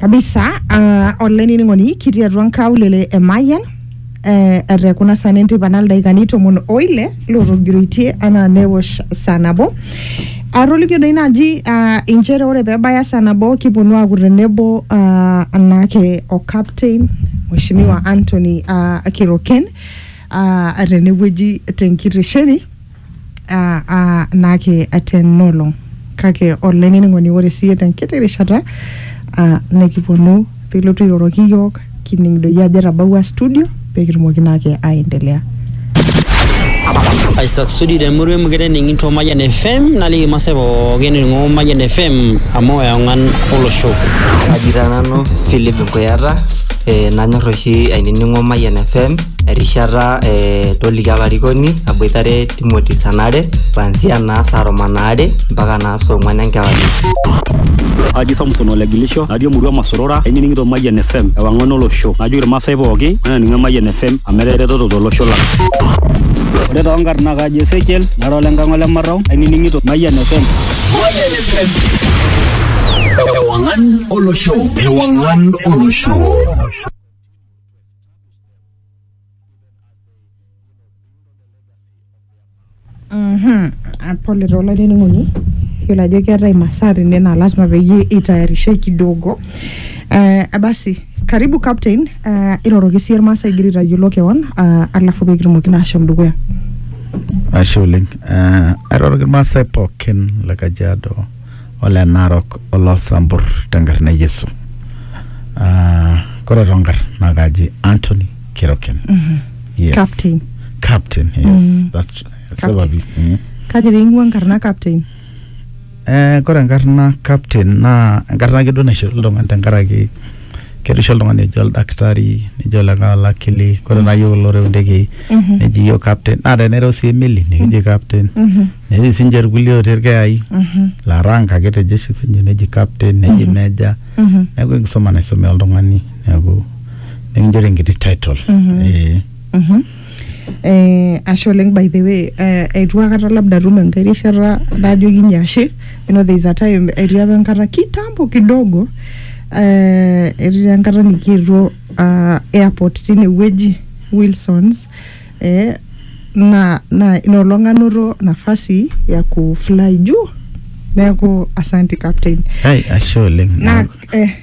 kabisa uh, olainining'oni kitii atua nkaulele e Mayian eh, ete kuna saa nentipa naa ildaikani tomon oile lootogiroitie anaa newosh saa nabo atolikio doi naaji uh, inchere ore peebaya saa nabo kiponu aaku tenebo uh, anaake o captain mheshimiwa Anthony uh, Kiroken uh, tenewueji tenkitesheni aa aa naake tena olong kake olainining'oni ore siiyie tenkiti rishata aa nikiponu pilotu airoroki iyiook kining doi ajo etabawua studio pekitumoki naake aendelea Isaac Sudi te murua emukete ening'ito Mayian FM naliki irmaasai pookin ening'o Mayian FM amu eong'an olosho. Kaji taa nanu Philip Nkuyata, eh, nanyor oshi ainining'o Mayian FM erishata eh, toliki olarikoni aboitare Timothy Sanare kuanzia naa saa tomon aare mpaka naa saa ong'wan enkewarie. Aji Samson Olegilisho, natii emurua Masorora, ainining'ito Mayian FM, ewang'an olosho. Najoki irmaasai pooki, mainining Mayian FM, amu etaa eretoto tolosho lang. Ore too nkarn naa kaji Ezekiel, nara ole Nkang'a ole Marrau, ainining'ito Mayian FM. Mayian FM. Ewang'an olosho. Ewang'an olosho. Mhm. Ah, pole taa olainining'oni yiolo ajo keetae imasaa tene naa lasima peyie itayarishe kidogo eh, basi karibu captain eh, iroroki siyie irmaasai igira aitayiolo kewon ah, alafu pee kitumoki naa ashom dukuya ashe oleng uh, airoroki irmaasai pookin le kajiado ole Narok oloo Sambur tenkarna e Yesu. Ah, Kore tonkarn naa kaji Anthony Keroken. Yes. Captain. Captain, yes. Mm. That's true. Captain. Sababi. Mm. Kaji pee ing'ua enkarna captain? Eh, kore enkarna captain naa enkarna ake duo naishori iltung'ani tenkaraki kerisho oltung'ani oji oldakitari nejo olikae olakili kore naa yiok kulo oreu ndekei neji yiok captain naa tenereu sii emeli nikiji captain netii sinche irkulie otii irkeyai laa rank ake te jeshi sinye neji captain neji meja neeku enkisuma naisumi oltung'ani neeku nikinchori enkiti title eh. Eh, ashe oleng by the way eh, eitu akata labda atum enkae rishata najokinye ashe you know there is a time etii apa enkata kitambo kidogo eh, etii enkata nikietuo ah, airport tinewueji Wilsons eh, na na inolong anoto nafasi ya kufly juu neeku asanti captain Hai, ashe oleng. na eh,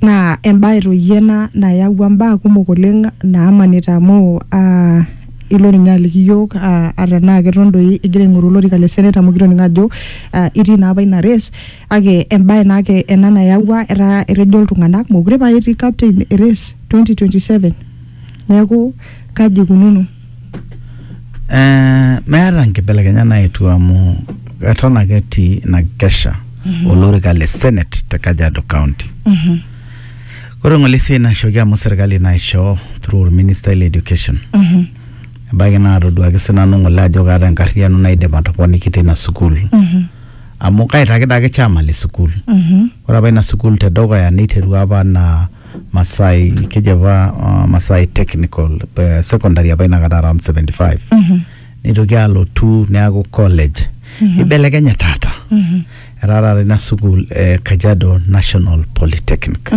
Naa embae toi ena nayawua mbaa kumok oleng naamanita amu aa ilo ninye aliki iyiook ata tenaa keton doi igira aingoru olorika le senate amu kitoning'o ajo itii naa apa ina race kake embae naa ake ena nayawua etaa etejo iltung'anak meekure pae etii captain race twenty twenty seven. Neeku kaji eikununo? Eh, meeta nkibelekenyat naetuo amu eton ake etii ina kesha olorika le senate te kajiado county ore ng'ole esiai naishooki amu serkali naishoo through orministai le education ebaiki naatoduaki sinanu ng'ole ajo kaata enkarriyiano naidim atoponiki tina sukuul amu kaitaked ake chairman le sukuul ore apa ina sukuul tedukuya neiterua apa anaa Masai keji apa uh, Masai Technical eh, secondary apa inakata around 75 nitoki alotu neaku college ibelekenye taata etaa taata ina sukuul eh, Kajiado National Polytechnic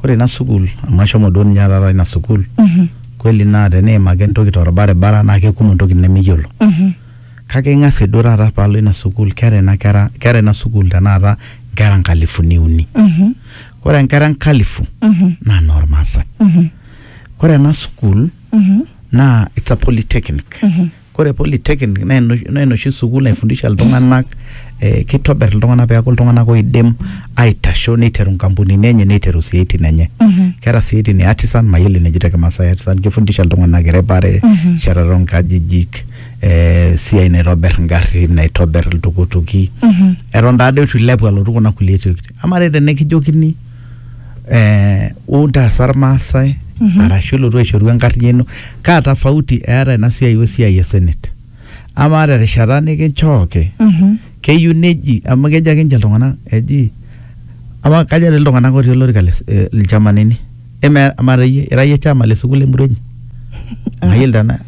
ore ina sukuul amu ashomo duo ninye taata ina sukuul kweli naa teniim ake entoki torbaribara naa kekumok intokitin nemiyiolo kake ing'asie duo taata paalo ina sukuul keeta ina kera keeta ina sukuul tenakata nkera nkalifuni uni Ore nkera enkalifu naa noormaasai. Ore ena sukuul naa it's a polytechnic. Ore polytechnic naa enoshi naa enoshi sukuul naifundisha iltung'anak eh kitobir iltung'anak peeku iltung'anak oidim aitasho niteru inkampunini enye niteru isiaitin enye. Keeta isiaitin e artisan mayiolo eneji te kimaasai artisan kifundisha iltung'anak eripare, enchetare oo nkajijik, eh esiai naitobir ingarrin, naitobir iltukutuki eton taadoi itu ilepu alotu kuna kulie tokiting Amaa te tenikijokini eh, wou ntaasa irmaasai arashu ilotu aishoru enkarriyiano, kaa tofauti eeta ina siai we siai e senate? Amaa terishata nikinchooki Mhm. keyieu neji amu kejo ake ninche iltung'anak eji amaa kaja dii iltung'anak otii olorika le s- eh, ilchamanini eme amaa doi iyie ira iyie chama le sukuul emurua inyi mayiolo tena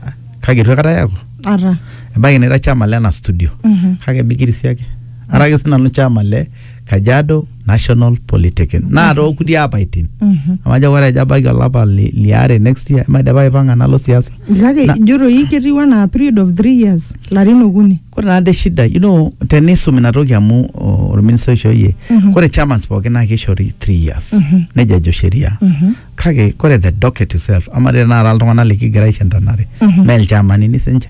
kake itu aikata eeku Ata. ebaiki nira chama lena studio Mhm. kake mikirisiaki ara ake sinanu chama le Kajiado National Polytechnic. Naa tookuti apaitin. Amu ajo ore ajo ebaiki olapa li- liare next year, maidipa aipang'a nalo siasa. Kake Na- ijo doi ketiu anaa period of three years, larin okuni. Kore naa de shida, you know, tenisum ina toki amu o- orministai oishooyie, Mhm. kore chamans pookin naa kishori three years. Mhm. Neija ejo sheria. Mhm. Kake kore the docket itself, ama tenakata iltung'anak likigira aishantanare, Mhm. mee ilchamanini sinche.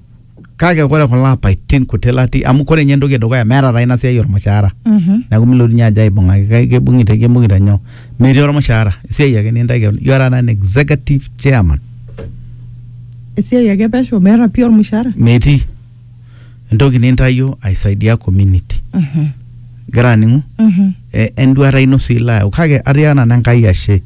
kake kore kulo apaitin kuti latii amu kore ninye entoki edukuya meeta taa ina siai ormushaara Mhm. neeku milotunye ajo aibung'aki kai- keibung'ita keibung'ita nyoo metii ormushaara esiai ake nintae keon you are an executive chairman esiai ake pesho meeta pii ormushaara metii entoki nintayio aisaidia community Mhm. igira aning'u Mhm. e- enduata ino sii ilo ayau kake atii nanu Enkai ashe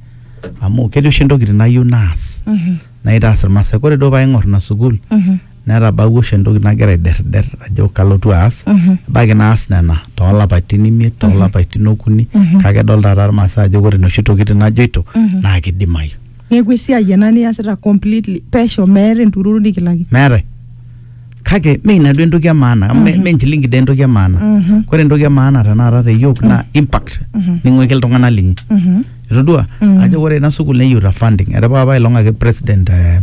amu ketii oshi intokitin nayieu naas Mhm. naitaas irmaasai kore duo paaing'or ina sukuul Mhm. netabawua oshi entoki nagira aiderder ajo kalotu aas Mhm. ebaiki naas nena toolapaitin imiet toolapaitin okuni Mhm. kake edol taata irmaasai ajo ore inoshi tokitin najoito Mhm. naa kidimayu neeku esiai ena niasita completely pesho meeta entururu nikilaki meetae kake me ina duo entoki emaana amu me- me enchilingi dee entoki emaana Mhm. kore entoki emaana tenakata te yiok naa impact Mhm. ning'uiki iltung'anak linyi Mhm. itodua Mhm. ajo ore ina sukuul neyiuta funding etipika apa ilong ake president eh,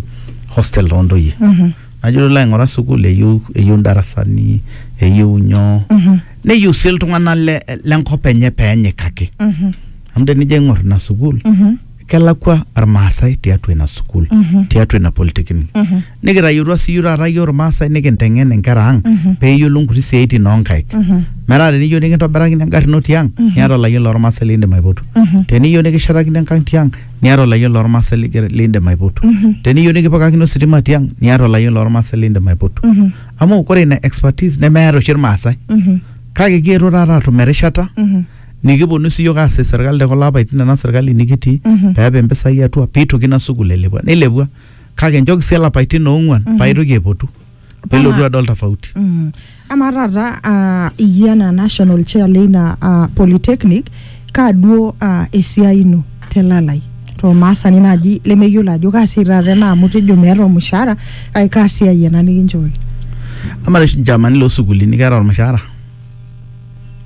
hostel toontoyie Mhm. najo ilo aing'ura sukuul eyiu eyiu ndarasani eyiu nyoo Mhm. neyiu sii iltung'anak le- lenkop enye peenyikaki Mhm. amu tenijo aing'or ina sukuul Mhm. kelakwa irmaasai tiatua ina sukuul Mhm. tiatua ina polytechnic Mhm. nikitayiotua siiyie taata iyie irmaasai nikinteng'en inkera ang peeyiolou nkuti siaitin oonkaik metaa teniyieu nikintobirakini engarri ino tiang niata olayioni lormaasai liindim aipotu teniyieu nikishetakini enkang tiang niata olayioni lormaasai ligira- liindim aipotu teniyieu nikipikakini ositima tiang niata olayioni lormaasai liindim aipotu amu kore ina expertise nemeeta oshi irmaasai kake kietuo taata atum erishata nikiponu sii yiok aas serkali te kulo apaitin ena serkali nikitii peepik impisai atua piitoki ina sukuul ailepua nilepua kake nchooki sii ilapaitin oong'uan paa itoki aipotu pee ilotu adol tofauti. Mm. Amaa taata ah, iyie anaa national chair leina ah, polytechnic kaa duo ah, esiai ino telalai tolmaasani naaji lemeyiolo ajo kaa siai taata ena amu tejo meeta ormushaara kake kaa siai ena nikinchooki Amaa oshi nchaamani loo sukuulini keeta ormushaara?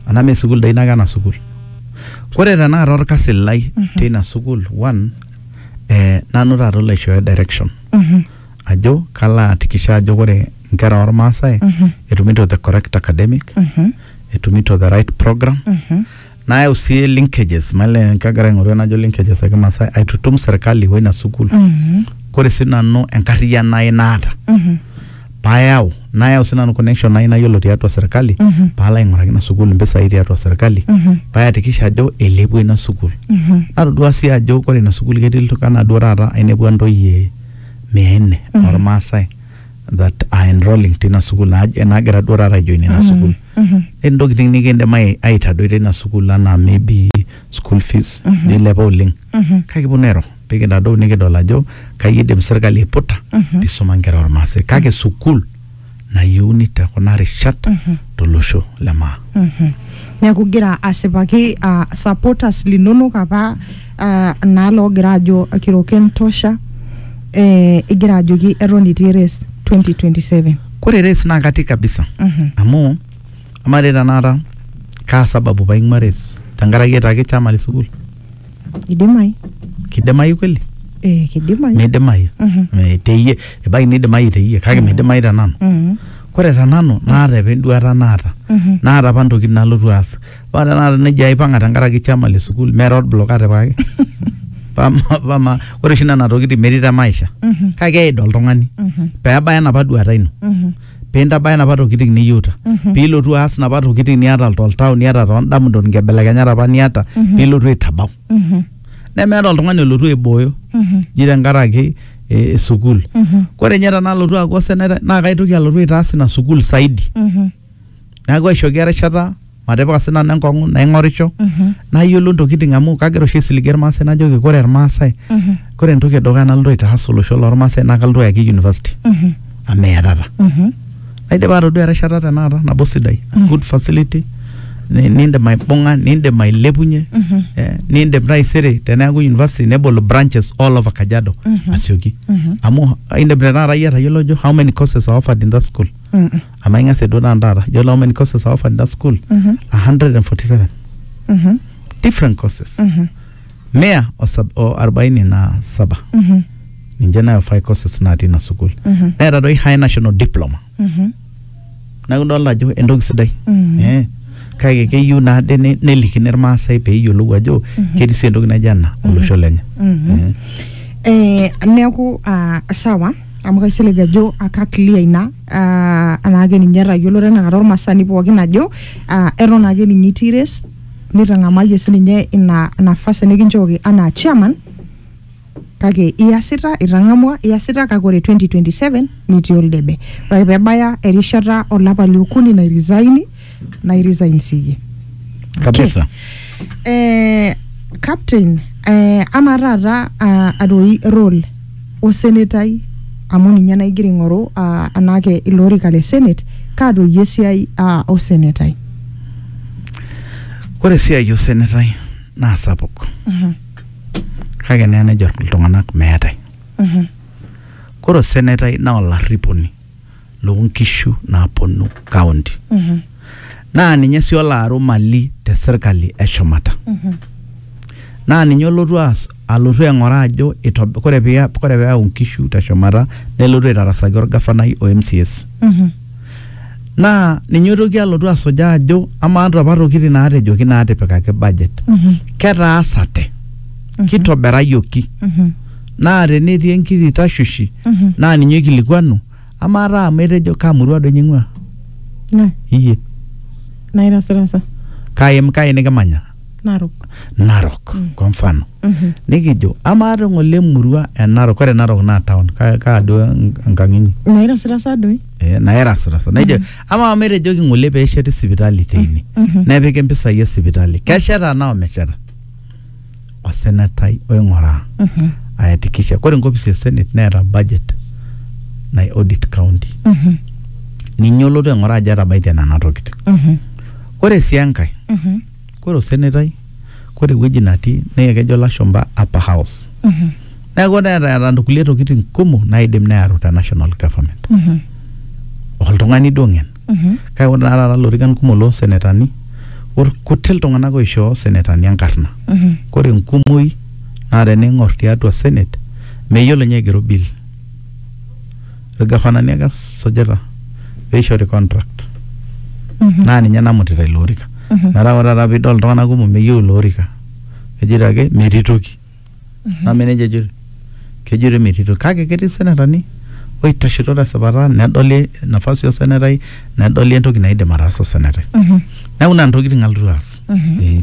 Anaa mee sukuul doi nake ena sukuul. Ore tenakata orkasi lai teina sukuul one eh, nanu taata olo aishooyo direction ajo kalo ahakikisha ajo ore inkera ormaasai etumito the correct academic etumito the right program nayau sii linkages male kagira aing'oru enajo linkages ekimaasai aitutum serkali woina sukuul kore sii nanu enkarriyiano ai naata payau nayau sinanu connection ai nayiolo tiatua serkali Mhm. paalo aing'uraki ina sukuul impisai tiatua serkali Mhm. payakikisha ajo eilepua ina sukuul Mhm. natodua sii ajo kore ina sukuul ketii iltung'anak duo taata ainepua ntoyie mia nne Mhm. ormaasai that are enrolling tina sukuul naaj- naagira duo taata aijoin ina sukuul Mhm. Ore ntokitin nikindim ai- aitadoi tina sukuul anaa maybe school fees Mhm. nilepa oleng Mhm. kake kiponu airo pikintadou nikidol ajo kai idim sirkali aiputa pisuma nkera ormaasai kake sukul nayieuni te kuna rishat tolosho le maa neeku igira asipaki ah, supporters linonok apa ah, naa loogira ajo kiroken tosha eh, igira ajoki eton itii race 2027 kore race naa katii kabisa Mhm. amu amaa dei tenakata kaa sababu paing'ua race tenkaraki etaa kichama le sukul Kidimayu. kidimayu kweli Eh, kidimayu. midimayu Mhm. Me- teyie ebaiki nidimayu teyie kake midimayu te nanu Mhm. kore te nanu naata apa enduata naata Mhm. naata apa ntokitin nalotu aas paa tenakata nejia aipang'a tenkaraki chama le sukuul mera olblok atipikaki pama pama ore oshi nena tokitin metii te maisha Mhm. kake eid oltung'ani Mhm. peebaya enapa duata ino Mhm. pee intabaya napa tokitin niyieuta pee ilotu aas napa tokitin niata toltau niata toondamunot nkibelekenyat apa niata pee ilotu aitabau nemeeta oltung'ani olotu aibooyo ji tenkaraki eh, sukuul ore ninye tenalotu aaku osenetai naa kaitoki alotu aitaas ina sukuul saidi neeku aishooki erishata matipika sinanu enkong'u naing'orisho Mhm. nayiolo ntokiting amu kagira oshi aisiligie irmaasai najoki kore irmaasai Mhm. kore entoki edukuya nalotu aitaas olosho lormaasai naa kalotu ayaki university Mhm. amu meatata Mhm. naidipa atodua erishata tenakata nabo sidai Mhm. good facility ni- nindim aibung'a nindim ailepunye Mhm. eh, nindim taisere teneeku university nebol branches all over kajiado Mhm. asioki Mhm. amu indim tenakata iyie atayiolo ajo how many courses are offered in that school Mhm. amaa ing'asie duo taata taata yiolo how many courses are offered in that school 147 Mhm. different courses Mhm. mia o sab- o arobaini na saba Mhm. ninche nayo five courses natii ina sukuul Mhm. neeta doi high national diploma Mhm. neeku idolta ajo entoki sidai Mhm. Eh, kake keyieu naa de ne- nelikini irmaasai peeyiolou ajo ketii sii entoki naijo ena olosho lenye Mhm. Eh, Eh, neeku ah, sawa amu kaisilig ajo aka clear ina uh, anaake ninye etayiolo tenakata ormasani pookin ajo uh, eton ake ninye itii res nitang'amayie sininye ina nafasi nikinchooki anaa chairman kake iasita itang'amua iasita kake ore 2027 nitii oldebe ore ake pebaya erishata olapa liokuni nairisaini na resign siye kabisa eh, captain eh, ama taata uh, atoi role osenetai amu ninye naigira aing'oru uh, anake ilo orika le senate kaatoyie esiai uh, osenetai ore esiai osenetai naa sapuk Mhm, kake naa nejo iltung'anak meetae mhm, ore osenetai naa olarriponi loo nkishu naaponu kaunti naa ninye sii olo aru mali te sirkali e shumata naa ninye olotu aas alotu aing'oraa ajo itob- kore pee kore pee eyau nkishu te shumata nelotu aitarasaki orgafanai o MCS naa ninye oitoki alotu asujaa ajo amaa inapa tokitin naatejoki naatipikaki budget ketaasate kitobirayioki naa tenetii enkiti tashoshi Mhm. naa ninye oikilikuanu amaa taa amu etejo kaa murua doi ning'ua Na, iyie nairasirasa. kai, kai nikimanya Narok. narok kwa mfano Mhm. nikijo amaa te ng'ole emurua e narok ore narok naa town kaa kaa duo en- enkang inyi Nairasirasa doi. Eh, nairasirasa naijo amaa amu etejoki ng'ole peesheti sipitali teine Mhm. nepiki mpisai e sipitali kesheta anaa omesheta osenetai oing'oraa Mhm. ayakikisha kore enkopis e senate neeta budget nai audit county Mhm. ninye olotu aing'oraa ajo etabaitie nena tokitin Mhm. kore sii enkae Mhm. kore osenetai kore ewueji natii naa kejo lashumpa upper house Mhm. neeku neeta eeta nkulie tokitin kumok naidim neyaru te national government Mhm. oltung'ani duo ng'en Mhm. kake ore naa taata ilorikan kumok loo senetani ore kuti iltung'anak oishoo senetani enkarna Mhm. kore enkumoi naa tening'or tiatua senate meyiolo ninye aigero bill irgafanani ake esujita peishori contract Mhm. naa ninye namutita ilo orika Mhm. metaa ore taata piidol iltung'anak kumok meyieu ilo orika ejito ake metii toki name nejo ejito kejito emetito kake ketii senetani oitashito tesipata nedoli nafasi osenetai nedoli entoki naidim ataasa osenetai neeku nena tokitin alotu aas Eh,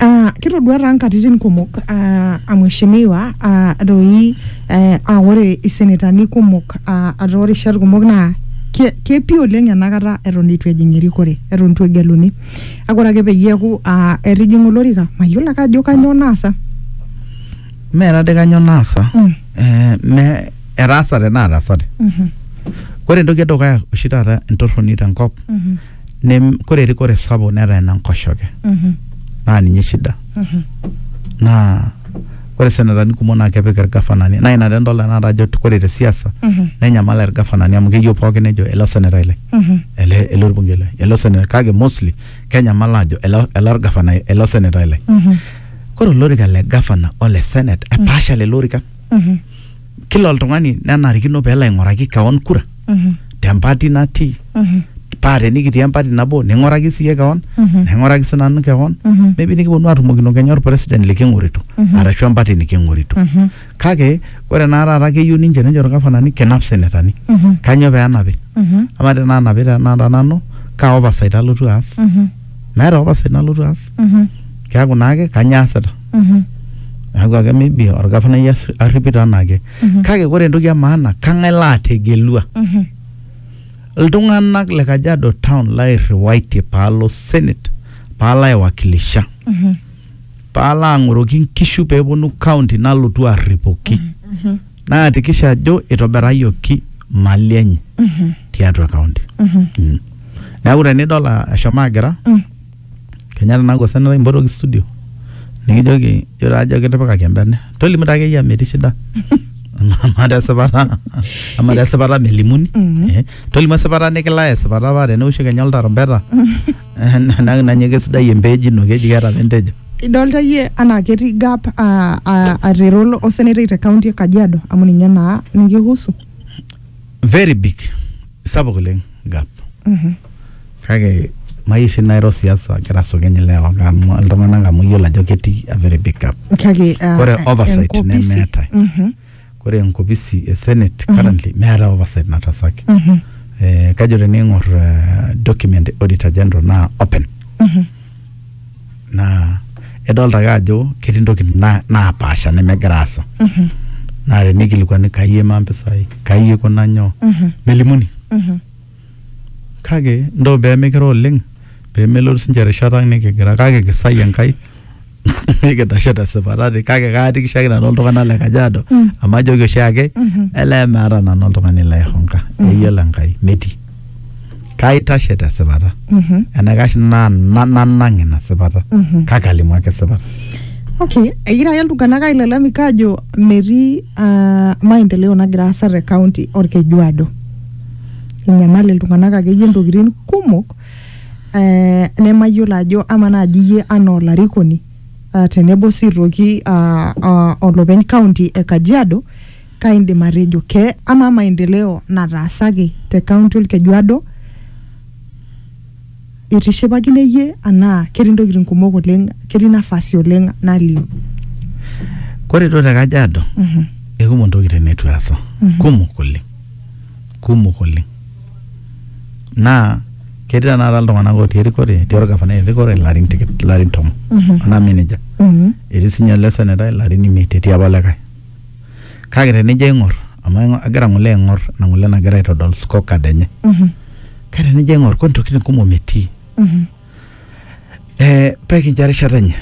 Ah, kitodua taa nkatitin kumok ah, a mheshimiwa ah, doi eh, ah, ore isenetani kumok ah, ata ore rishat kumok naa ke- kepi oleng enakata eton eitu ejing erikore eton eitu egeluni Kake ore ake peyie eeku aa etijing'a olorika mayiolo ake ajo kanyoo naasa. Mee tadii kanyoo naasa Mm. eh, me etaasate naataasate. Mhm, Kore entoki edukuya oshi taata entorroni tenkop mhm, nem kore erikore sapuk netaa ene nkoshoke mhm, naa ninye shida mhm. naa ore senetani kumok naa kepik irgafanani naa ina taa idol tenakata ajo ore te siasa nenyamal irgafanani amu keyieu pookin nejo ele osenetai lai ele ele orbungei lai ele osenetai kake mostly kenyamal aajo ele ele orgafanai ele osenetai lai kore olorika le gavana ole senate epaasha lelo orikan kila oltung'ani nenarikino pelo aing'oraki kewon kura Mhm. tempati natii Mhm. paa tenikitii empati nabo ning'oraki siiyie kewon Mhm. naing'oraki sinanu kewon Mhm. maybe nikiponu atumokino kenya orpresident liking'orito Mhm. arashu empati niking'orito Mhm. kake ore naa taata keyieu ninche nejo irgafanani kinap senetani Mhm. kanyoo pee enapi Mhm. amaa tenaa napi tenakata nanu kaa oversight alotu aas Mhm. meeta apa sai nalotu aas Mhm. keaku naake kanyoo aasita Mhm. neaku ake maybe orgavanai as- arripito anaake Mhm. kake ore entoki e maana kang'ae laategelua Mhm. iltung'anak le kajiado town lairriwaitie paalo senate paalo aiwakilisha Mhm. paalo ang'oroki nkishu peeponu county nalotu arripoki Mhm. naakikisha ajo itobirayioki mali enye tiatua kaunti Mm. neeku tenidol a- eshomo agira Mm. kenya tenaa kosena lai mpotoki studio nikijoki jo taa ajo kitipikaki embene tolimu taa akeyie amu etii shida ama tesipata ama tesipata melimuni Mm. Eh, tolimu esipata nikilaya esipata paa teneosho kenya oltarumbeta Enak nanye kesidai empeej ino keji keeta apa entejo. Idolta iyie anaa ketii gap ah, ah, arero lo- osenetai te kaunti e Kajiado amu ninye naa nikihusu. Very big. Sapuk oleng gap. Kake mayieu oshi nairo siasa agira asukeny ilewa amu iltung'anak amu iyiolo ajo ketii a very big gap. Kake ah, Ore oversight enkopisi. nemeetae. Mhm. Ore enkopisi e Senate currently meeta oversight natasaki. Eh, kajo tening'or eh, document e Auditor General naa open. Naa edolta ake ajo ketii ntokitin na- naapaasha nemegira aasa. Naa tenikilikuani kai eimaa mpisai, kai ikuna nyoo, melimuni. Kake ntoo pee mikiro oleng pee melotu sii ninche erishata ang nikigira kake kisae Enkai nikidashe te sipata ati kake kaatikisho ake nanu iltung'anak le Kajiado amu ajoki oshi ake elee meeta nanu oltung'ani laihonka eyiolo Enkai metii. Kaitashe te sipata enaikash naa na- nanang ina sipata kake alimu ake esipata. Okay, egira ake iltung'anak ailalamika ajo metii ah, maendeleo nagira aasa te county Olkejuado. enyamal iltung'anak akeyie intokitin kumok eh, nemayiolo ajo ama naaji iyie anaa olarikoni uh, tenebo sii aitoki uh, uh, olopeny kaunti e Kajiado kaindim atejo ke ama maendeleo nataasaki te kaunti olkejuado itishipakine iyie anaa ketii ntokitin kumok oleng ketii nafasi oleng naliu Kore duo te Kajiado, ekumok ntokitin neitu easa. Kumok oleng. Kumok oleng. Naa ketii tenakata iltung'anak otii erikore, etii olgavanai erikore larin tikit, larin tomon. Anaa meneja. Etii sinye ele senetai larin imiet etii apa olikae. kake tenijo aing'or amu aing'o- agira ng'ole aing'or ina ng'ole nagira aitodol scorecard enye Mhm. kake tenijo aing'or kore ntokitin kumok metii Mhm. eh, pekincho erishata enye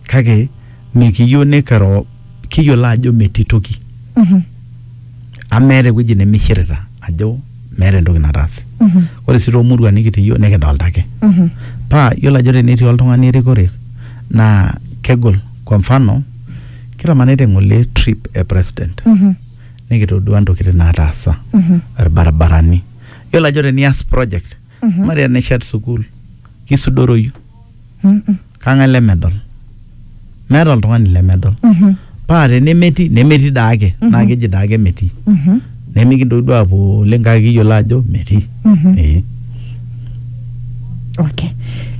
kake mikiyieu nikiro kiyiolo ajo metii toki Mhm. amu meeta ewueji nemishirita ajo meeta entoki nataase Mhm. ore sii toomurua nikitii yiok nikidolta ake Mhm. paa yiolo ajo tenetii oltung'ani erikore naa kegol kwa mfano Kitamanita ng'ole trip e president Mhm. nikitodua ntokitin naataasa Mhm. irbaribarani. Yiolo ajo tenias project Mhm. mari enishet sukuul kisudoroyu Mhm. kang'ae lemedol meeta oltung'ani lemedol Mhm. paa tenemetii nemetii daake Mhm. naa keji daake metii. Mhm. nemikintoki duo apuo oleng kake kiyiolo ajo metii Mhm. ee okay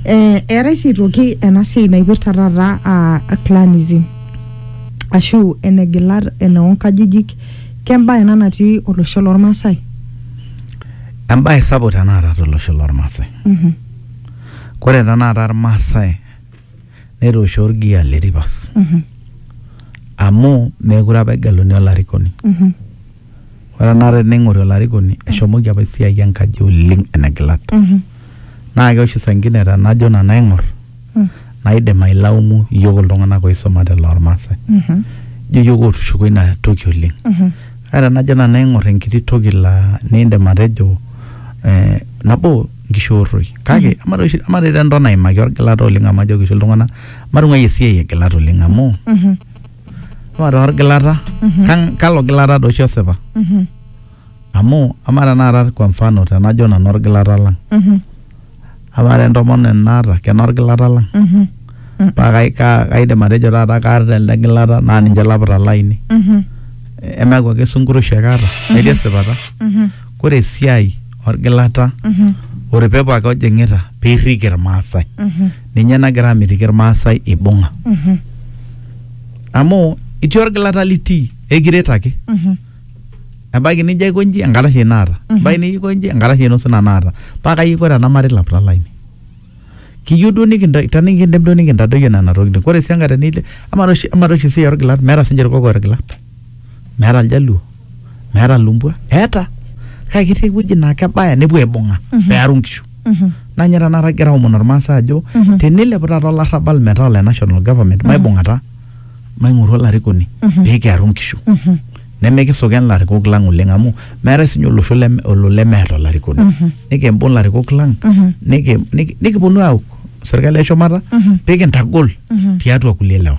eh, eetae sii aitoki ena siai naipirta taata ah, clanism ashu enegilat enoonkajijik kembae ena natii olosho lormaasai embae sapuk tenakata tolosho lormaasai Mhm. kore tenakata irmaasai netoosho orgia le rivers amu meekure apa egeluni olarikoni ore enakata tening'ori olarikoni eshomoki apa esiai enkaji oleng enegilat naa keoshi saa ingine tenajo nanu aing'or naidim ailaumu iyiok iltung'anak oisumate lormasae ijo iyiok otushuko ina toki oleng kake tenajo nanu aing'or enkiti toki laa nindim atejo eh, nabo nkishoorroi kake ama doi oshi- ama doi te nton aimaki orgilata oleng amu ajoki oshi iltung'anak matung'ai esiai egilata oleng amu Mhm, ama taa orgilata Mhm. kan- kalo gilata doi oshi osipa mhm, amu ama tenakata kwa mfano tenajo nanu orgilata lang mhm, ama te ntomononi naata kena orgilata lang mhm, paa kai- ka- kaidim atejo taata kaata elde gilata naa ninche lapita lainei mhm, emeaku ake sunkurushi ake aata metii esipata mhm. kore esiai orgilata Mhm. ore pepo ake ojing'ita pirrik irmaasai Mhm. ninye nagira amitiki irmaasai ibung'a Mhm. amu itii orgilata litii ekiret ake Mhm. ebaiki nijo aikonji enkata shi naata Mhm. ebaiki nijo aikonji enkata shi nusina naata paa kayieu ore ena mari lapita laini kiyieu duo nikinta tenikindim duo nikintadoyio nena tokitin ore sii enkae tenile ama toshi ama toshi esiai orgilat meeta sinche irkokoyo irgilat meeta iljaluo meeta ilumbwa eeta kake ketii ewueji naa kebaya nepuo aibung'a pearu inkishu naa ninye tanakata kigira aomon ormaasai ajo tenilepu taata olarrabal metaa ole national government maibung'ata maing'oru olarikoni pekiaru inkishu nemikisuken ilarikok lang oleng amu meetae sinye olosho leme olo lemeeta olarikoni nikimbung ilarikok lang niki niki nikiponu auk serkali eshumata pikintagol tiatua kulie lewa.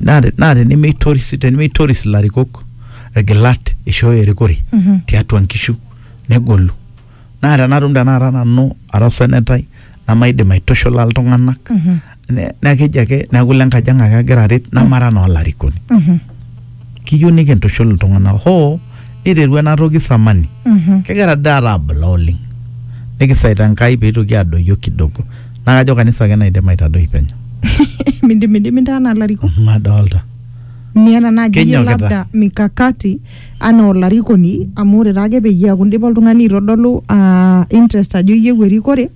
naa te- naa tenemeitoris tenemeitoris ilarikok irgilat eishooyo erikore Mhm. tiatua nkishu negolu naa tenatum tenakata nanu ara osenetai namaidim aitushula iltung'anak Mhm. ne- naa keji ake neeku ile nkaji ang ake agira aret namara naa olarikoni Mhm. kiyieu nikintushul iltung'anak hoo niterua ena toki samani Mhm. kegira dii taata abula oleng nikisaita enkai peitoki adoyio kidogo naa kajo kanisa ake naidim aitadoi penyo mindimidimi ntaa anaa larikok madolta miata naaji iyie Kenyokita. labda mikakati anaa olarikoni amu ore taake peyie eaku indipa oltung'ani aitodolu uh, interest ajo iyieu erikore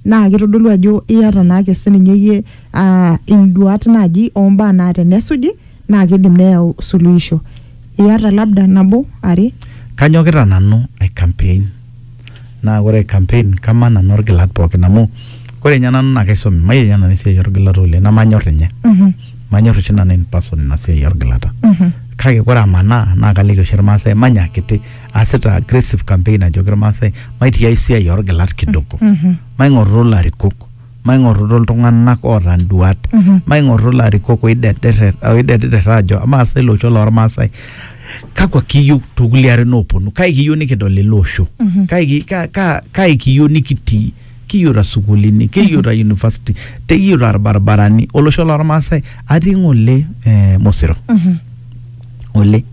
naa kitodolu ajo iyata naake sininye iyie uh, induat naaji ombaa naa tenesuji naa kidim neyau suluhisho iyata labda nabo are kanyokita nanu ai campaign naa ore campaign kamaa nanu orgilat pookin amu ore ninye nanu naa kaisomi mayiolo nanu esiai orgilata oleng namanyor ninye Mhm. manyor oshi nanu in person ina siai orgilata Mhm. kake ore amanaa naa kaliki oshi irmaasai manya akiti aasita aggressive campaign ajoki irmaasai maitii ae siai orgilat kidogo Mhm. maing'orru ilarikok maing'orrutu iltung'anak oota nduat maing'orru ilarikok oidederrer oidederrer aajo amaa sa ilo osho lormaasai kakwa kiyieu tokulie arin ooponu kai kiyieu nikidol ele osho kai, ki- ka- ka- kai kiyieu nikitii kiyieuta sukuulini kiyieuta university te kiyieuta irbaribarani olosho lormaasai atii ng'ole eh, mosiro ng'ole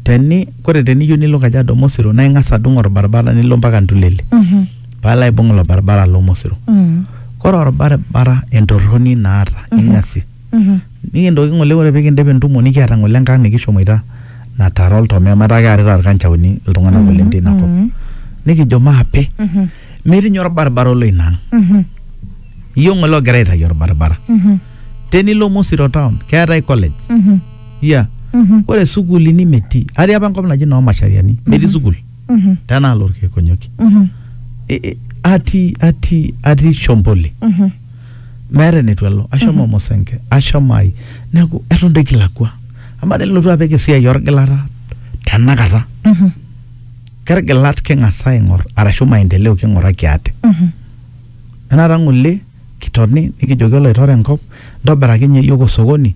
teni kore teniyieu nilo kajiado mosiro naa ing'as adung orbaribara nilo mpaka ntulele palo aibung ilo baribara lomosero Mm. kore orbaribara entorroni naata ing'asie Mhm. nikintoki ng'ole ore pikindip entumo nikiata ng'ole enkang nikishomoita natara oltomea metaa kearita irkanchaoni iltung'anak Mhm, oleng teina kop mhm. nikijo maape Mhm. metii ninye orbaribara olo ina ang Mhm. iyioo ng'ole ogira aitayu orbaribara Mhm. tenilo mosiro town keetae college Mhm. iya Mhm. ore sukuulini metii atii apa enkop naji noo mashariani metii sukuul Mhm. tena alo orkekonyoki Mhm. I- i- atii atii atii shomboli Mhm. meeta enetu alo ashomo mosenke ashomo ai neeku eton doi kilakua amaa nilotu apik esiai orgilata tenakata Mhm. kergilat king'asa aing'or arashu maendeleo king'uraki ate Mhm. enata ng'ole kitoni nikijoki oloitore enkop ntobiraki nye yiok osokoni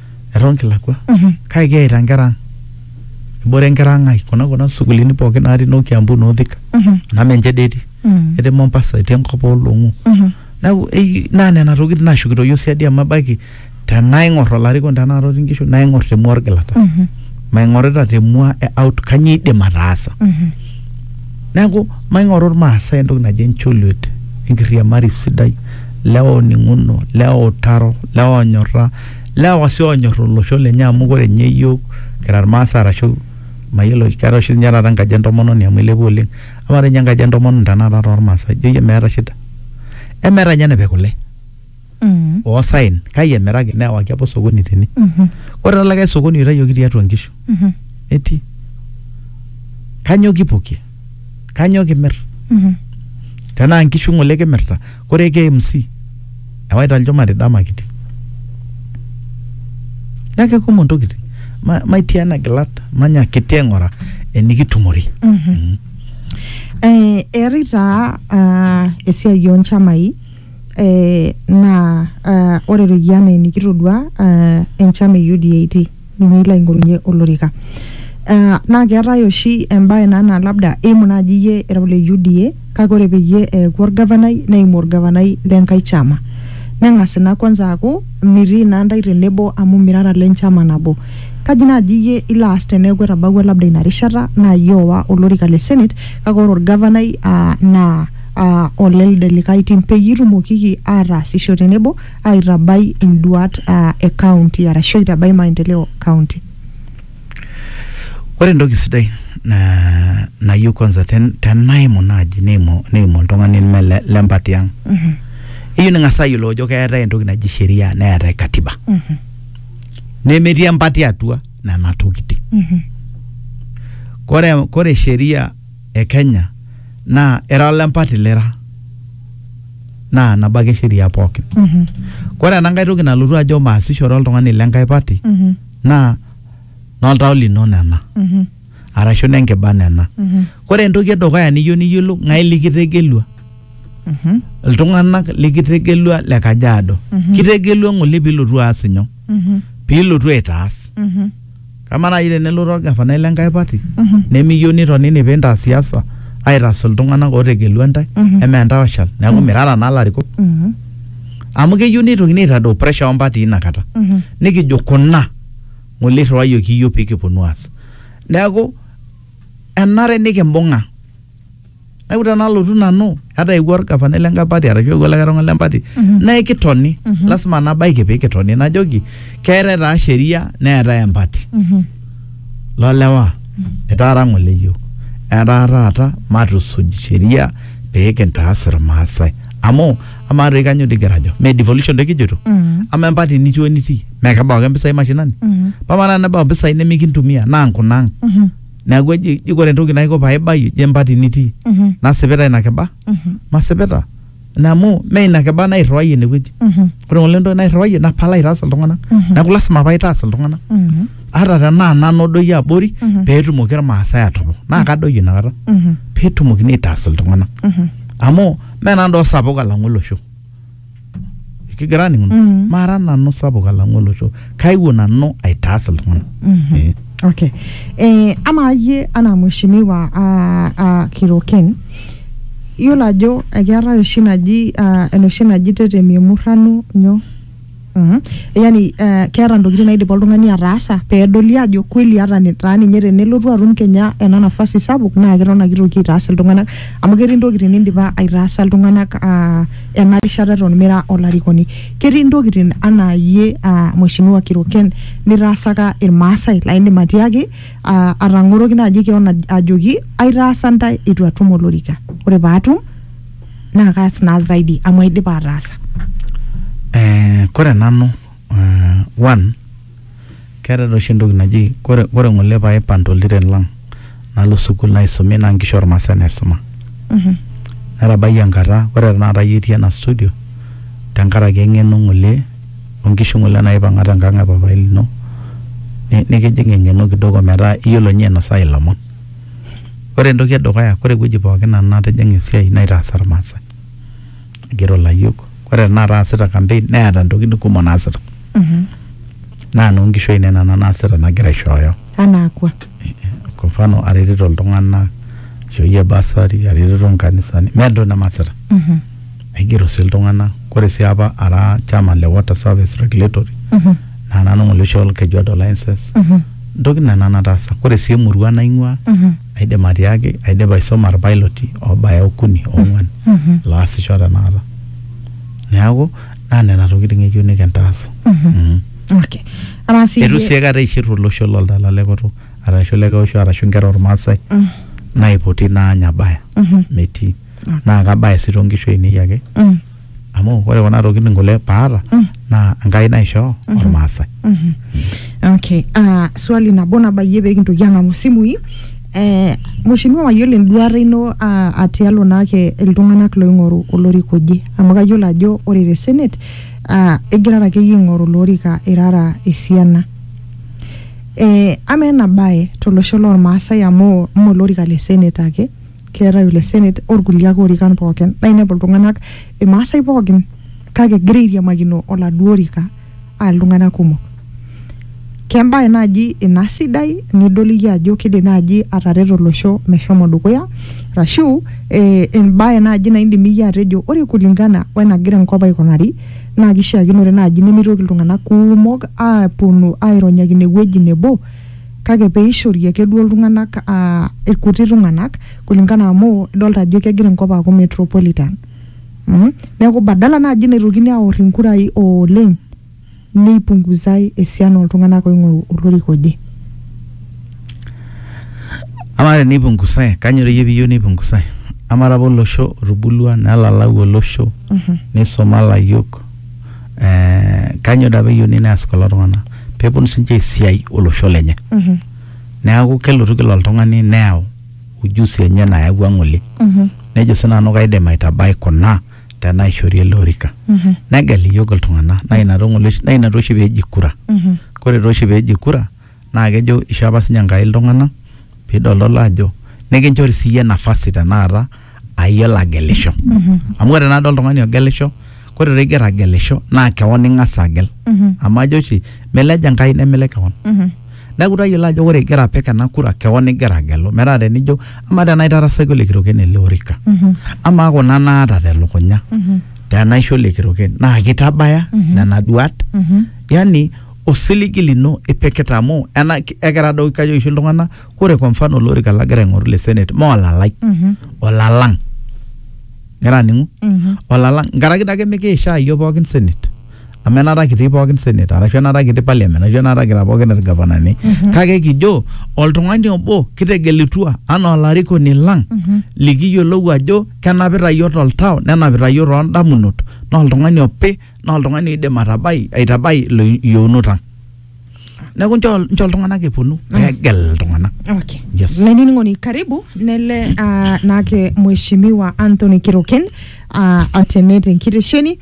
eton kilakwa Mhm. kake kiyaita nkera ang ebore nkera ang ai kuna kuna sukulini pookin natii noo Kiambu noo Thika Mhm. ena Menche dei etii Mm. etii Mombasa etii enkop oolong'u Mhm. neeku ei- naa nena tokitin naashukito iyiook siadi amu ebaiki tenaing'or olarikoni tenakata otii nkishu naing'or temua orgilata Mhm. maing'orita temua e out kanyio idim ataasa Mhm. neeku maing'oru irmaasai entoki naji encholiet enkiriamari sidai lewa oning'uno lewa utaro lewa onyorra lewa sii oonyor olosho lenye amu kore ninye iyiok kira irmaasai arashu mayiolo keetae oshi ninye taata enkaji entomononi amu ilepua oleng amaa doi ninye enkaji entomononi tenakata tormaasai ijo iyie meeta shida emeeta ninye enepik kule Mm. oosaen kai emiraki newaki apa osokoni tene Mhm. ore taa likae sokoni oitayioki tiatua nkishu Mhm. etii kanyoo kipokie kanyoo kimir Mhm. tenaa nkishu ng'ole kimirta kore KMC ewaita lchumari dama kiti naa kekumok ntokitin ma, maitii ana gilat manya kiti aing'ura enikitumore Mhm. Eh, eetae taa ah, esiai onchamai eh, naa ah, ore royie anaa enikitodua ah, enchama e UDA etii nilo aing'orunye olorika. Uh, naa keetae oshi embae naa naa labda eimu naaji iyie era ole UDA kake ore peyie eeku orgavanai neimu orgavanai lenkae chama neng'as ina kwanza aaku mitii naa ntae tenebo amu mirara ile nchama nabo kaji naaji iyie ilo aas teneeku etabawua labda ina rishata naa iyie owa olorika le senate kake ore orgavanai uh, naa uh, olelde likae tim peyie itumokiki ataasisho tenebo aitabai induat uh, e county arashu aitabai maendeleo county ore entoki sidai na- nayieu kwanza ten- tenaimu naaji neimu neimu oltung'ani leme le- lempati ang eyieu ning'as ayiolou ajo keetae entoki naji sheria neetae katiba nemetii empati atua nena tokiting kore, kore sheria e Kenya naa era ole mpati lira naa nabo ake sheria pookin. Mhm. Ore ena nkae toki nalotu ajo maasishore oltung'ani le nkae pati Mhm. naa noltau lino nena Mhm. arashu nenkiba nena. Mhm. Ore entoki edukuya niyieu niyiolou ng'ae likitegelua Mhm. iltung'anak likitegelua le Kajiado. Mhm. Kitegelua ng'ole piilotu aas inyoo? Mhm. Piilotu aitaas. Mhm. Kama naaji tenelotu orgavanai le nkae party nemiyieu nitonini pee intaas siasa aitaas iltung'anak ootegelua ntae emaa entae oshal neeku mirara naa ilarikok amu keyieu neitokini aitadou pressure oo mpatii ina kata nikijo kuna ng'ole irriwayioki iyiook pee kiponu aas neeku enare nikimbung'a. neeku tenalotu nanu ata eewuo orgavanai le nkae party arashu eewuo likae tung'ani le mpati naa ekitoni lasima nabaiki pee kitoni najoki keetae taa sheria neetae empati lolewa itaara ng'ole yiok etaa taata matusuj sheria pee kintaas irmaasai amu amaa toi kanyioo dii kigira ajo mee devolution doi kijito ama empati nitii onitii mee kebau ake impisai mashinani pama naa tenebau impisai nemikintumia naa nkunaang neeku eji eji ore entoki naiko paibayie je empati nitii Mhm. nasipita ina kiba Mhm. masipita ina amu mee ina kiba nairriwayie inewueji Mhm. ore ng'ole entoki nairriwayie napal aitaas iltung'anak Mhm. neeku lasima paitaas iltung'anak Mhm. ata tenaa nanu odoyio abori Mhm. peetumoki irmaasai atopok naa kadoyio inakata Mhm. peetumokini aitaas iltung'anak Mhm. amu mee nanu doo sapuk alang'u olosho kigira aning mm. mara nanu sapuk alang'u olosho kaiwuo nanu aitaas iltung'ana mm -hmm. eh. okay eh, ama yie anaa mheshimiwa uh, ah, uh, ah, kiroken iyiolo ajo ekeetae oshi naji uh, enoshi naji tetemi emurrano nyoo Mm -hmm. Yani uh, eh, keeta ntokitin naidipa oltung'ani ataasa peedoli ajo kweli hata taa ninye tenelotu atum kenya ena nafasi sapuk naa keton ake itoki aitaas iltung'anak amu ketii ntokitin nindipa aitaasa iltung'anak uh, ena rishata eton mira olarikoni. Ketii ntokitin anaa iyie uh, Mheshimiwa Kiroken nitaasaka Irmaasai laa indim atiaki uh, atang'oroki naaji keon ajoki aitaasa ntae eitu atum olorika. Ore paatum naa kaas naa zaidi amu aidipa ataasa. Eh, kore nanu uh, one Keetae taa oshi entoki naji kore kore ng'ole paaipan to ltiren lang' nalo sukuul naisumi naa nkishu olmaasai naisuma. Netabayie enkata kore tenakata iyie itii ena studio tenkaraki eng'eno ng'ole o nkishu ng'ole naaipang'a tenkang' e papaai lino ni nikijing' eng'eno kidogo metaa iyiolo ninye ainosaa ilomon. Ore entoki e dukuya kore ewueji pookin nanu natijing'a esiai naitaasa ilmaasai. igero layiok ore tenakata aasita campaign neeta ntokitin kumok naasita naa noonkishu ainei nena naasita nagira aishooyo anaa kwa kwa mfano aretito iltung'anak aishooyie basari aretito nkanisani meeta entoki nemaasita aigero sii iltung'anak ore sii apa ara chairman le water service regulatory naa nanu ng'ole oisho Olkejuado license ntokitin nena nataasa ore sii emurua naing'ua aidim atiaki aidipa aisoma irpailoti obaya okuni ong'uan laasisho tenakata neeku naa nena tokitin eyieu nikintaas Mhm. okay amaa sii eitu sii aikata eishirru olosho loltala le koto arashu le keosho arashu inkera ormaasai naipoti naanya abaya metii naa kabaya sii tonkishu ainei ake amu ore kuna tokitin kule paata naa Enkai naishoo ormaasai. Mhm. Okay. Ah, swali nabo nabayie pee kintoki ang'amu isimui. Eh, Mheshimiwa mayiolo enduata ino ah, ah, tialo naake iltung'anak loing'oru olorika oje. Amu kayiolo ajo ore te senate ah, igirara akeyie aing'oru olorika irara esiana. Eh, amaa ena bae tolosho lormaasai amu mee olorika le senate ake, keetae ole senate orkulie ake orikan pookin naa inepu iltung'anak imaasai pookin kake egira airiamakino oladuo orika aa iltung'anak kumok kembae naaji ina sidai nidol iyie ajo kidim naaji atareto olosho meshomo dukuya rashu eh, embae naaji naidim iyie atejo ore kulingana wenagira enkop aikunari naa kishiakinore naaji nemitoki iltung'anak kumok aponu aironyakino ewueji nebo kake peishori ake duo iltung'anak uh, irkuti tung'anak kulingana amu idolta ajo kegira enkop aaku metropolitan mm? neeku badala naaji naitokini aor inkurai oleng neipunguzai esiana oltung'anak oing'oru olorika oje amaa teneipungusae kanyor iyie piyieu neipungusae amaa apa olosho otubulua nelalau olosho nisuma layiok eh, kanyoo daa peyiuni neas kulo tung'anak peponu sinche esiai olosho lenye Mhm. neaku kelotu kila oltung'ani neyau ujusi enye nayawua ng'ole Mhm. nejo sinanu kaidim aitabai kuna tenaishori ele orika Mhm. negel iyiok iltung'anak naa ina tong'ole oshi- naa ina tooshi peji kura Mhm. kore tooshi peji kura naa kejo isho apa sininye Enkai iltung'anak pidolidolo ajo nikinchori siyie nafasi tenakata ayiolo agelisho amu ore tenakata oltung'ani ogelisho kore taa igira agelisho naa kewon ing'as agel amu ajo oshi milej Enkai nemilej kewon neeku tayiolo ajo ore igira apik ena kura kewon igira agelu metaa tenijo amaa tenaa aitarasaki ole kiroken ele orika amaa kuna naata telukunya tenaisho ole kiroken naa kitabaya nena duat yani osiligi lino ipikita amu ena ekira doi kajo oshi iltung'anak ore kwa mfano olorika lagira aing'oru le senate maa olalai Mhm. olalang ngira aning'u Mhm. olalang nkaraki dake mikiishaa iyiok pookin senate amu enaata kitii pookin senate arashu enaata kitii parliament arashu enaata kira pookin irgavanani kake kijo oltung'ani obo kitegelutua anaa olarikoni lang Mhm. likiyiolou ajo kenapita iyiok toltau nenapita iyiok toondamunot naa oltung'ani opi naa oltung'ani oidim atabai aitabai ilo yieunot ang neeku nchoo nchoo iltung'anak eponu peegel iltung'anak Okay. Yes. Menining'oni karibu nele uh, nake mheshimiwa Anthony Kiroken uh, atene tenkitesheni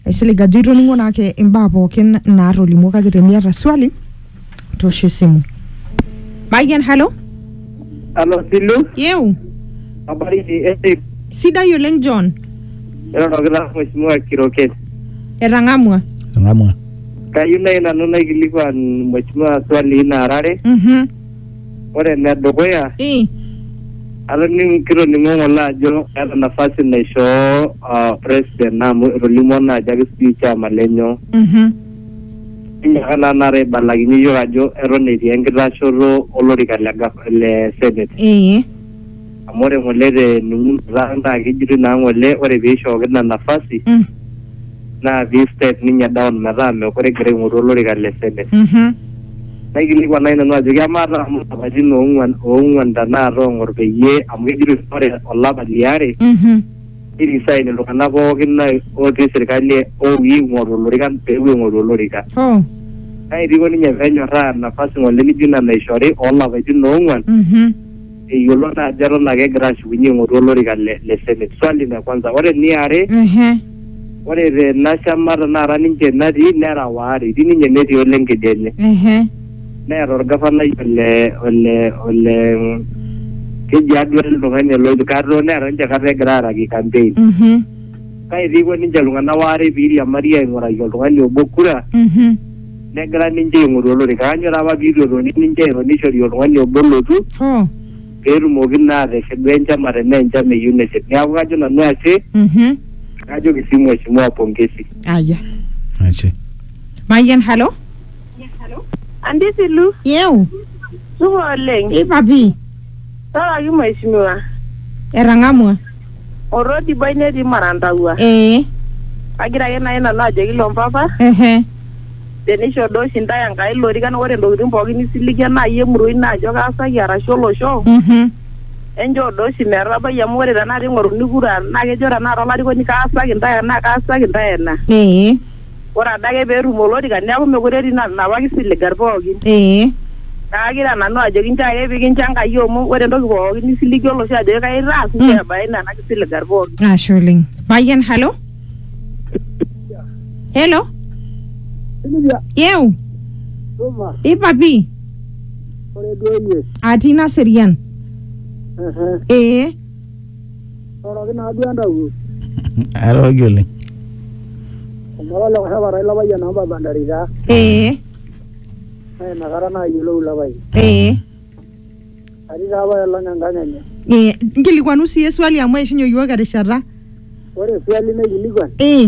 aisilig ajo itoning'o nake imbaa pookin naatolimuo kake teniata swali tosho esimu mayian halo Alo Silu, yeu habari ni Eric, sidai oleng john erorokita Mheshimiwa Kiroket. etang'amua Ng'amua. Kayieu nai nanu naikilikuan Mheshimiwa swali nara are. Mhm. Ore ene dukuya, Eh, atoning kitoning'o ng'ole ajo eeta nafasi naishoo ah, president amu etolimuo naa ajo ake sijui chama lenyo. mhm. Enyorra naa taata aibalakinye iyiook ajo eton etii enkitashoto olorika le gava le senate. Ee. Amu ore ng'ole tening'uno taata naa kejitoi naa ng'ole ore peishooki ina nafasi Mm. naa pei step ninye down metaa meekure egira aing'oru olorika le senate. Mhm. Naikilikuan naai nanu ajoki amaa taa amu ilapaitin oong'uan oong'uan tenakata oong'or peyie amu kejitoi ore olapa liare Mhm. nirisae lelo tung'anak pookin na- otii sirkali e OE eing'oru olorikan pepuo aing'oru olorika. Oh. Kake eitu eiko ninye penyorraa nafasi ng'ole nijo ina naishori olapaitin oong'uan Mhm. eyiolo naa ajo eton ake egira ashukunye aing'oru olorika le, le senate. Swali le kwanza. Ore eniare, Ehe. ore tena shama tenakata ninche natii nera waare, etii ninye netii ole ng'ede enye. Ehe. neeta orgafanai ole ole ole keji aduo ele tung'ani ole Oikato neeta ninche kata egira aaraki campaign Mhm. kake piiko ninche iltung'anak waare piiriamari aing'uraki oltung'ani obo kura Mhm. negira ninche aing'oru olorika aanyo taa apa piitu etoni ninche airo nishori oltung'ani obo olotu Hoo. peetumoki naa ateshilu enchama tenaa enchama eyieu neshet neeku kajo nanu ashe Mhm. kajoki sii mheshimiwa pongezi Aya. Ashe. Mayian, halo. Andisilu, Yeu, supa oleng. ipa pii, Tororoki mheshimiwa. etang'amua. Orrodibai netii Marantauwa. Ee, Kagira ake nai nanu ajoki ilo mpapa, ehe, tenisho duo oshi ntae Enkai ilorikan ore ntokitin pookin nisiligie nai emurua ino ajo kaasaki arashu olosho, mhm, enchoo duo oshi metabai amu ore tenakata ing'oruni kura naa kejo tenakata olarikoni kaasaki ntae ena, kaasaki ntae ena. ee. ore adake pee etum olorika neeku mekure etii ina- inapa kisiligat pookin ee kaakira nanu ajoki nchoo ake pikincho Enkai amu ore entoki pookin nisiligi olosho ajoki kai itaas nchoo Mm. ebaiki nena kisiligat pookin ashe oleng payian halo helo Silvia, yeu tuma, ipapi ore duo iyie. atii naserian Ehe. ee Oroki naa duo entawuo. Airoroki oleng. Omara ole Koshopatai ilo payian amu baba ntare taa. Ee. Naa inakata naa ayiolou ilo payian. Ee. Atii taa apa olong enkang enye. Ee. Nkilikuanu sii eswali amu eishunye iyiook erishata. Ore eswali naikilikuan. Ee.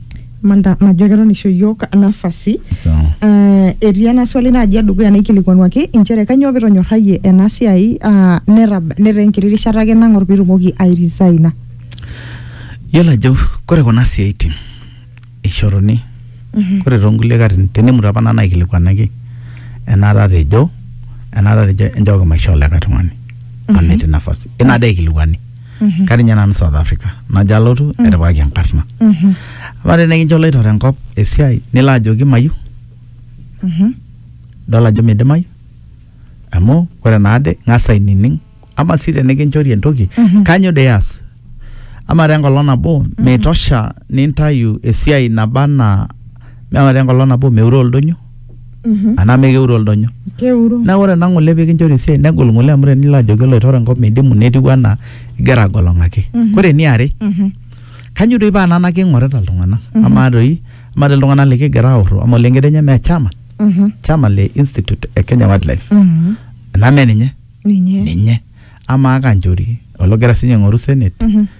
Malta najo keton isho yiok nafasi Sawa. Eh, etii ena swali naaji edukuya naikilikuanuaki inchere kanyoo pitonyorrayie ena siai ah, netab- netaa enkiti rishata ake nang'or piitumoki airisaina Yiolo ajo kore kuna siaitin eishoruni kore toonkulie katitin tenemut apa nanu aikilikuanaki enaata atejo enaata atejo enchooki maishoo likae tung'ani amu etii nafasi. Ina dee eikilikuani. Mhm. katii ninye nanu south africa najo alotu etipikaki enkarna Mhm. ama tene kincho loitore enkop esiai nilo ajoki mayieu Mhm. idol ajo midimayu amu ore naade ng'as ainining ama sii tenikinchori entoki Mhm. kanyo dee ias ama te enkolong nabo meitosha nintayu esiai naba anaa ama te enkolong nabo meure oldonyo anaa mee keure oldonyo. keuro Naa ore ena ng'ole pikinchori esiai negol ng'ole amu tenilo ajoki oloitore enkop midimu netiu anaa igira agolong'aki. Ore eniare, Mhm. kanyo doi paa nana king'orita iltung'anak? Amaa doi, amaa doi iltung'anak likigira aorro, amaa ole ng'ede nyoo? Mee chairman? Mhm. Chairman le Institute e Kenya Wildlife. Mhm. Enaa mee ninye? ninye Ninye. Amaa Kanchori ologira sinye aing'oru senate? Mhm.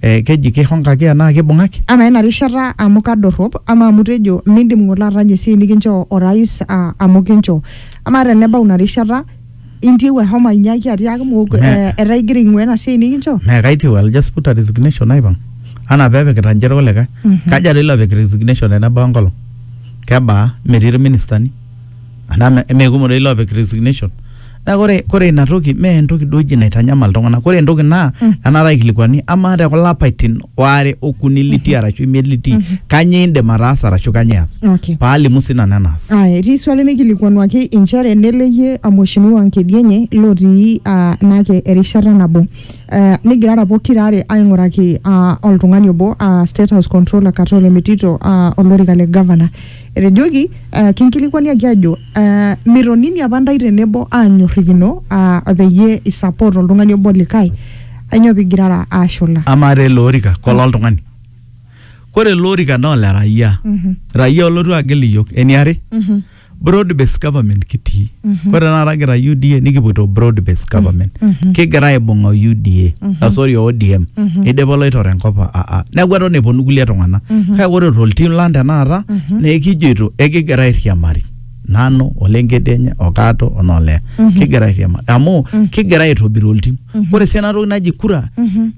eh, keji keihonkaki enaa keibung'aki? Amaa ina rishata amu kadorrop? Amaa amu itejo mindim ng'ole atanyu esiai nikinchoo orais aa amu kinchoo? Amaa tenebau ina rishata intieu ashomo ainyiaki atiaaki mookure Me- eh, etaa igira aing'uaa ina siai nikinchoo? Mee kaitiu, I'll just put a resignation aipang. Anaa pee epikita ninche irkulikae. Kaja doi ilopik resignation tenebau enkolong? Kebaa? Metii irministani. anaa me- mee kumok doi loopik resignation naa kore kore ina toki mee entoki duo oji naitanyamal iltung'anak kore entoki naa Mm. enaata aikilikuani amaa te kulo apaitin waare okuni litii arashu imiet litii kanyoo indim ataasa arashu kanyoo ias Okay. paalimu sii nanu enaas Aya, etii swali mikilikuanuaki inchere neleyie amweshimiwa Nkedienye lotii ah, naake erishata nabo Eh, nigirara pokira are aing'uraki ah, oltung'ani obo ah, State House Controller Katole Metito ah, olorika le governor etejoki uh, kinkilikuaniaki ajo uh, mitonini apa ntae tenebo aanyorrikino uh, peyie isupport oltung'ani obo likae ainyoo pigirara aashula amaa taa ele orika kola oltung'ani kore ele orika naa ole raia raia olotu agel iyiok eniare broad based government kitii Ore tenakata kira UDA nikipoito broad based government. Kigira aibung'a o UDA, ah, sorry o ODM. Eidipa oloitore enkop a- a- a- neeku eton eponu kulie tung'anak. Kake ore toltim lang tenakata naa ekijoito ekigira airiamari. Nanu, ole Ngedienye, o Kato, o Noleya. Kigira airiamari. Amu kigira aitobir oltim. Ore sii ena toki naji kura,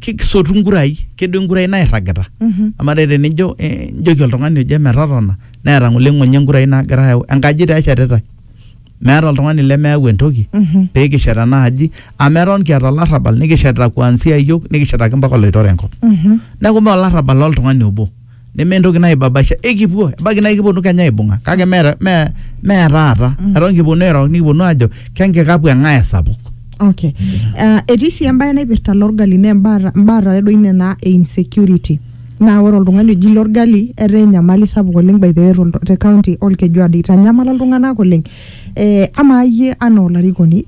kisotu nkurai, kedou nkurai nairragita. Amaa dai tenijo eh, nijoki oltung'ani oje metotona neeta ng'ole ng'onyo enkurai naagira ayau. Enkaji taa eshetitae. meeta oltung'ani lemeyau entoki pee kishet ena aji amu eton kiata olarrabal nikishetita kuanzia iyiok nikishetaki mpaka oloitore enkop neeku mee olarrabal loltung'ani obo neme entoki naibabaisha ekipuo ebaiki naa ekiponu kenya aibung'a kake mee mee mee taata eton kiponu airo nikiponu aajo kenkikapu eng'ae esapuk okay uh, etii sii embae naipirta lorgali naa embaata mbaata doi nena e insecurity Naa ore oltungani oji Lorgali etaa enyamali sapuk oleng by the way te county olkejuado eitanyamala iltunganak oleng. Amaa iyie anaa olarikoni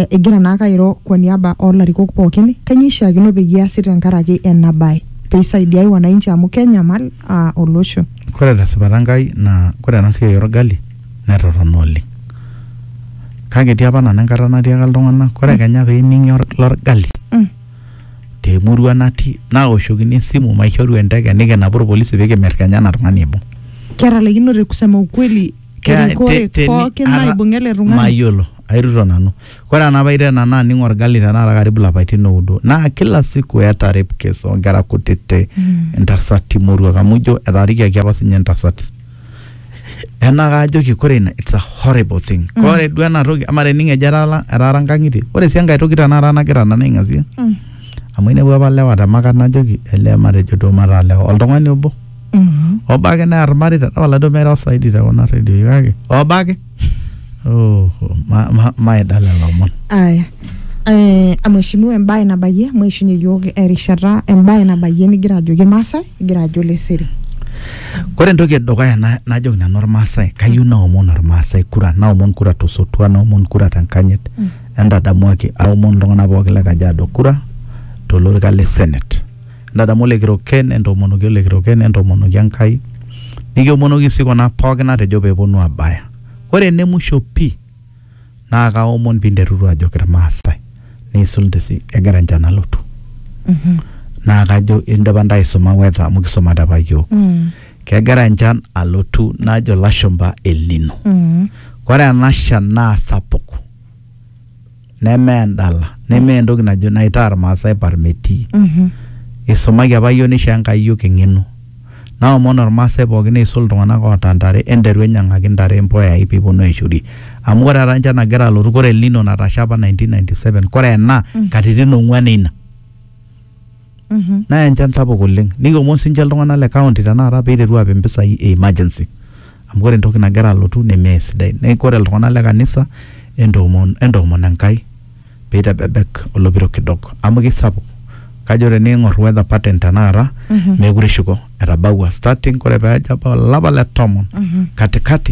igira naake airo kwa niaba oo larikok pookin kainyoo eishiakino peyie easi tenkaraki ena bae pee isaidiai wananchi amu kenyamal olosho. Ore te sipata Enkai naa ore ena siai oo Lgali netorrono oleng. Kake etii apa nanu enkata natiaka iltunganak ore kenya pee ening'i Lorgali te murua natii naoshokini esimu maishoru enteke nikinapu irpolisi pikimir kenya ena tung'ani aibung Ketalaikinote kusema ukweli Kea- erikore te- teni- pookin ara- naibung'a ele tung'ani. mayiolo airruto nanu kore enapaita ena naa aning orgali tenakata karibu lapaitin oudo naa kila siku eeta rape case onkera kutiti Mm. intasati moruak amu ijo etaarikiaki apa sinye intasati ena kaajoki kore ina it's a horrible thing mm. kore duo ena toki ama tening ejo etaara etaara nkang'itie ore sii enkae toki tenakata nagira nanu aing'asie Mm. amu inepu apa lewa te makat najoki elee matejo duo mataa lewa oltung'ani obo Mhm. obo ake near irmareita tapala duo meiro saidi te kuna redioi kake obo ake Oh, ma- ma- maidala lomon aya eh, mheshimiwa embaye nabayie maishunye yiok erishata embaye nabayie nigira ajoki irmaasai igira ajo leseri Kore entoki edukuya na- najoki nanu Irmaasai, kayieu naomon Irmaasai kura, naomon kura tosotua, naomon kura tenkanyit. Entadamuaki, aomon iltung'anak pooki le Kajiado kura tolorika le Senate. Ntadamu olekiroken, entoomonoki olekiroken, entoomonoki Enkai, nikiomonoki sii kuna pooki natejo pee eponu aabaya. Ore ene musho pii naa kaomon pee interuru ajoki Ilmaasai neisul nte sii egira enchan alotu. Naa kajo indipa ntae aisuma weather amu kisumate apa iyiook. Kegira enchan alotu najo ilashumpa El Nino. Ore ena shan naa sapuk. neme endala neme entoki najo naitaa irmaasai parmetii isumaki apa yiok nishoo enkai yiok eng'eno naomon ormaasai pookin neisul iltung'anak oota ntare enteru enyiang'aki ntare impuyai piponu aishorie amu kore taata enchan nagira alotu kore elnino natasha apa 1997 kore ena katitin ong'uan eina. Mhm. naya enchan sapuk oleng nikiomon sinche iltung'anak le county tenakata peiteru apik impisai e emergency amu ore entoki nagira alotu nemeesidai neeku ore iltung'anak le kanisa entoomon entoomon Enkai peitebebek olopiro kidogo amu kisapuk kajo tening'orr weather pattern tenakata Mhm. meekure eshuko etabaua starting kore peejo abau olapa le tomon Mhm. katikati